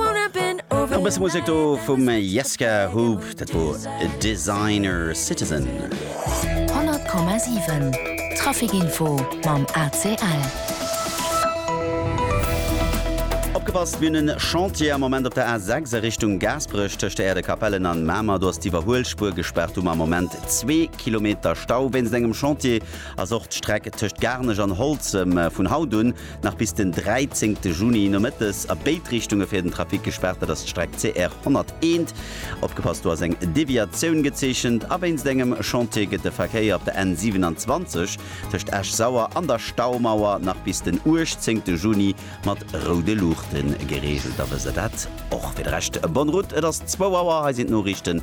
Nach e bësse Musek do vum Jesca Hoop, dat wor e Designer Citizen. 100,7 Traficinfo mam ACL. Opgepasst, mir hunn e Chantier am Moment op der A6 a Richtung Gaasperech tëscht der Aire de Capellen an Mamer. Do ass d'Iwwerhuelspuer gespaart, do hu mer am Moment zwee Kilometer Stau wéinst engem Chantier. Ass och d'Streck tëscht Garnech an Holzem vun haut un nach bis den 13 Juni nomëttes a béid Richtunge fir den Trafic gespaart. Dat ass d'Streck CR 101, opgepasst do ass eng Deviatioun gezeechent, a wéinst engem Chantier gëtt de Verkéier op der N 27 tëscht Esch-Sauer an der Staumauer nach bis den 18 Juni mat roude Luuchte gereegelt. Da wësst der dat och. Fir de Rescht, Bonne Route, et ass 2 Auer, hei sinn d'Noriichten.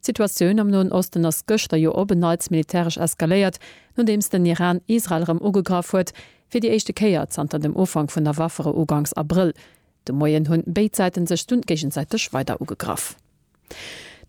D'Situatioun am Noen Osten ass gëschter jo op en Neits militäresch eskaléiert, nodeems den Iran Israel erëm ugegraff huet, fir déi éischte Kéier zanter dem Ufank vun der Waffere uganks Abrëll. De Moien hunn béid Säiten sech dunn géigesäiteg weider ugegraff.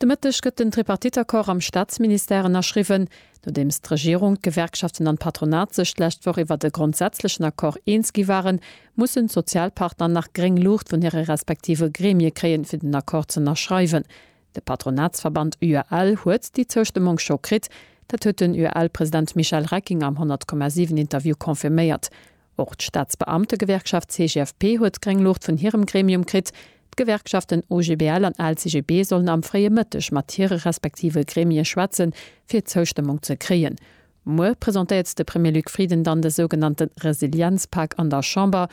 De Mëtteg gëtt den Tripartite-Accord am Staatsministère ënnerschriwwen. Nodeems d'Regierung, d'Gewerkschaften an d'Patronat sech d'lescht Woch iwwert e grondsätzlechen Accord eens gi waren, mussen d'Sozialpartner nach gréng Luucht vun hire respektive Gremie kréien, fir den Accord z'ënnerschreiwen. De Patronatsverband UAL huet déi Zoustëmmung scho kritt. Dat huet den UAL-President Michel Recking am 100,7 Interview confirméiert. Och d'Staatsbeamtegewerkschaft CGFP huet gréng Luucht vun hirem Gremium kritt. D'Gewerkschaften OGBL an LCGB sollen am fréie Mëtteg mat hire respektive Gremie schwätze fir Zoustëmmung ze kréien. Muer presentéiert de Premier Luc Frieden dann de sougenannte Resilienzpak an der Chamber.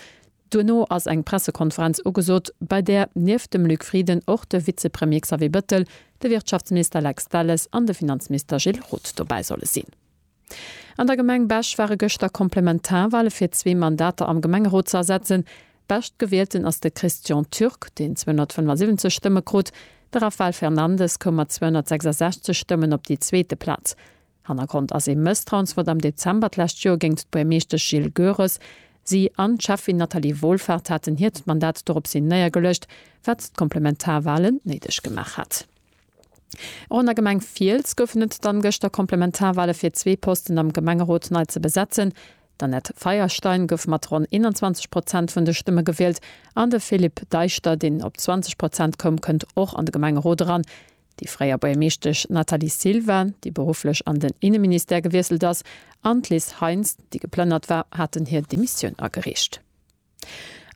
Duerno ass eng Pressekonferenz ugesot, bei där nieft dem Luc Frieden och de Vizepremier Xavier Bettel, de Wirtschaftsminister Lex Delles an de Finanzminister Gilles Roth dobäi solle sinn. An der Gemeng Bech ware gëschter Komplementarwale fir zwee Mandater am Gemengerot ze ersetzen. Beschtgewielten ass de Christian Türk, deen 275 Stëmme krut. De Rafael Fernandes koum mat 266 Stëmmen op déi zweete Plaz. Hannergrond ass ee Mësstrauensvott am Dezember d'lescht Joer géint d'Buermeeschtesch Jill Goeres. Si an d'Schäffin Nathalie Wohlfahrt haten hiert Mandat doropshin néiergeluecht, wat d'Komplementarwalen néideg gemaach hat. Och an der Gemeng Fiels goufen et dann gëschter Komplementarwale fir zwee Posten am Gemengerot nei ze besetzen. D'Annette Feierstein gouf mat ronn 21 Prozent vun de Stëmme gewielt an de Philippe Deischter, deen op 20 Prozent koum, kënnt och an de Gemengerot eran. déi fréier Buergermeeschtesch Nathalie Silva, déi berufflech an den Inneministère gewiesselt ass, an d'Liz Heintz, déi geplënnert war, haten hir Demissioun agereecht.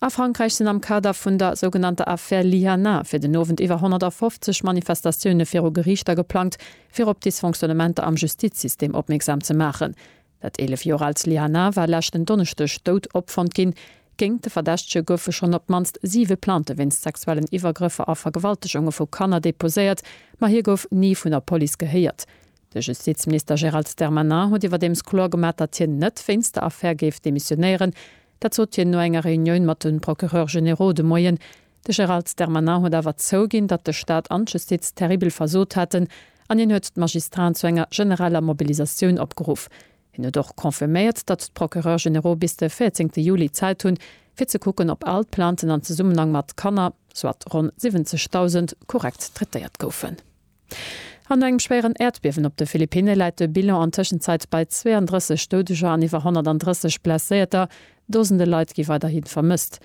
A Frankräich sinn am Kader vun der sougenannter Affaire Lyana fir den Owend iwwer 150 Manifestatioune viru Geriichter geplangt, fir op Dysfonctionnementer am Justizsystem opmierksam ze maachen. Dat 11 Joer aalt Slihanaa war leschten Donneschdeg dout opfonnt ginn. Géingt de Verdächtege goufe schonn op d'mannst siwe Plainte wéinst sexuellen Iwwergrëffer a Vergewaltegunge vu Kanner deposéiert, ma hie gouf ni vun der Police gehéiert. De Justizminister Gérald Darmanin huet iwwerdeems kloer gemaach, datt hien net wéinst der Affär géif demissionéieren. Dat sot hien no enger Reunioun mat de Procureurs généraux de Moien. De Gérald Darmanin huet awer zouginn, datt de Staat an d'Justiz terribel versot haten an hien huet d'Magistraten zu enger genereller Mobilisatioun opgeruff. Hien huet och confirméiert, datt d'Procureurs généraux bis de 14 Juli Zäit hunn, fir ze kucken, ob all d'Plainten an Zesummenhang mat Kanner, soit ronn 70.000, korrekt traitéiert goufen. An no engem schwéieren Äerdbiewen op de Philippinne läit de Bilan an Tëschenzäit bei 32 Doudeger an iwwer 130 Blesséierter, Dosende Leit gi weiderhi vermësst.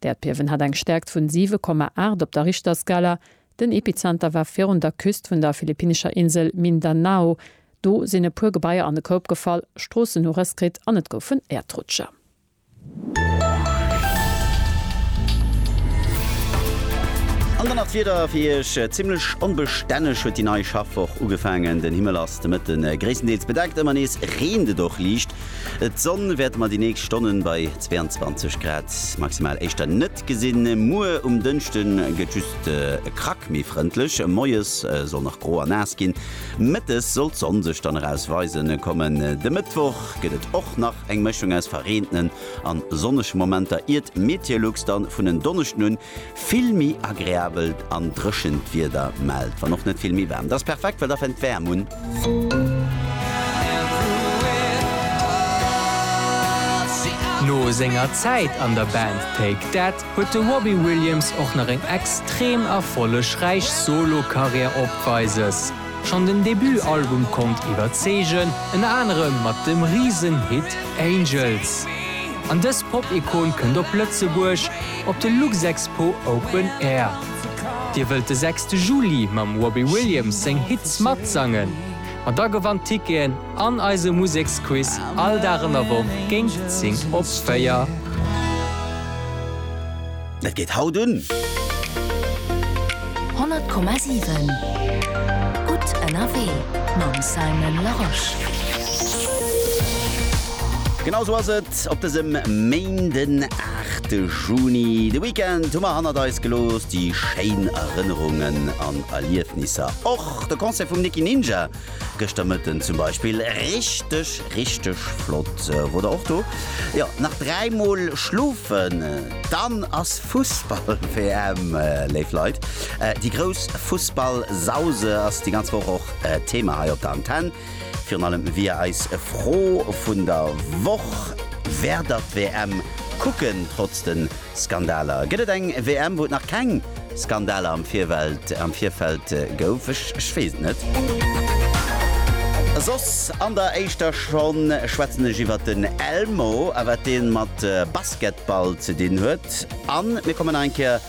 D'Äerdbiewen hat eng Stäerkt vun 7,8 op der Richterskala. Den Epizenter war virun der Küst vun der philippinescher Insel Mindanao. Do sinn e puer Gebaier an de Koup gefall, Stroossen hu Rëss kritt an et goufen Äerdrutscher. An dann nach d'Wieder fir Iech, Zimmlech onbestänneg huet déi nei Schaffwoch ugefaangen. Den Himmel ass de Mëtte gréisstendeels bedeckt, ëmmer nees reent et och liicht. D'Sonn wäerte mer déi nächst Stonnen bei 22 Grad maximal éischter net gesinn. Muer um Dënschden gëtt just e Krack méi frëndlech, moies soll nach gro a naass ginn, mëttes soll d'Sonn sech dann eraus weisen kommen. De Mëttwoch gëtt et och nach eng Mëschung aus verreentenen an sonnege Momenter, iert Meteolux dann vun en Donneschden un Vill méi agreabelt an dréchent Wieder mellt, wann och net vill méi waarm. Dass perfekt, well da fännt d'Wärm un. No senger Zäit an der Band Take That huet de Robbie Williams och nach eng extrem erfollegräich Solo-Karriär opweises. Schonn den Debut-Album konnt iwwerzeegen, ënner anerem mat dem Risen-Hit Angels. An dës Pop-Ikon kënnt op Lëtzebuerg, Op de Luxexpo Open Air. Dir wëllt de sechste Juli mam Robbie Williams seng Hits matsangen? Ma da gewannt Ticketen an eise Museksquiz all Dag an der Woch géint 10 op 4. Dat geet haut un! 100,7 Gutt ënnerwee mam Simon Larosche. Genau sou ass et op dësem Méindegowend. 8 Juni. De Weekend hu mer hannert eis gelooss, déi schéin Erënnerungen an Erliefnisser och. De Concert vum Nicky Ninja gëschter Mëtten zum Beispill, richteg, richteg flott. Wor der och do? Jo, nach dräi Mol schlofen, dann ass Fussball-WM, léif Leit. Déi grouss Fussball-Sause ass déi ganz Woch och Thema hei op der Antenn. Virun allem wier eis Fro vun der Woch, Wäert der d'WM kucken trotz de Skandaler? Gëtt et eng WM, wou et nach keng Skandaler am Virfeld am Virfeld gouf? Ech ech weess et net. Soss an der éischter Schonn schwätzen ech iwwert den Elmo a wat dee mat Basketball ze dinn huet. An mir kommen nach eng Kéier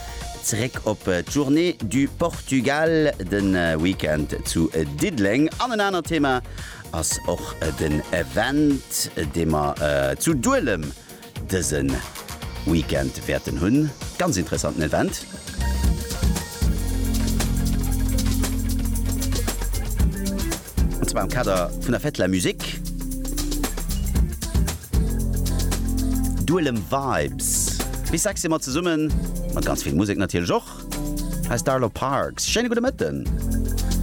Zeréck op d'Journée du Portugal, de Weekend zu Diddeleng. An en anert Thema ass och den Event, dee mer zu Duelem dëse Weekend wäerten hunn. Ganz interessanten Event. Et war am Kader vun der Fête de la Musique. Duelem Vibes bis 6 si mer zesummen, mat ganz vill Musek natierlech och. Hei ass d'Arlo Parks. Schéine gudde Mëtten.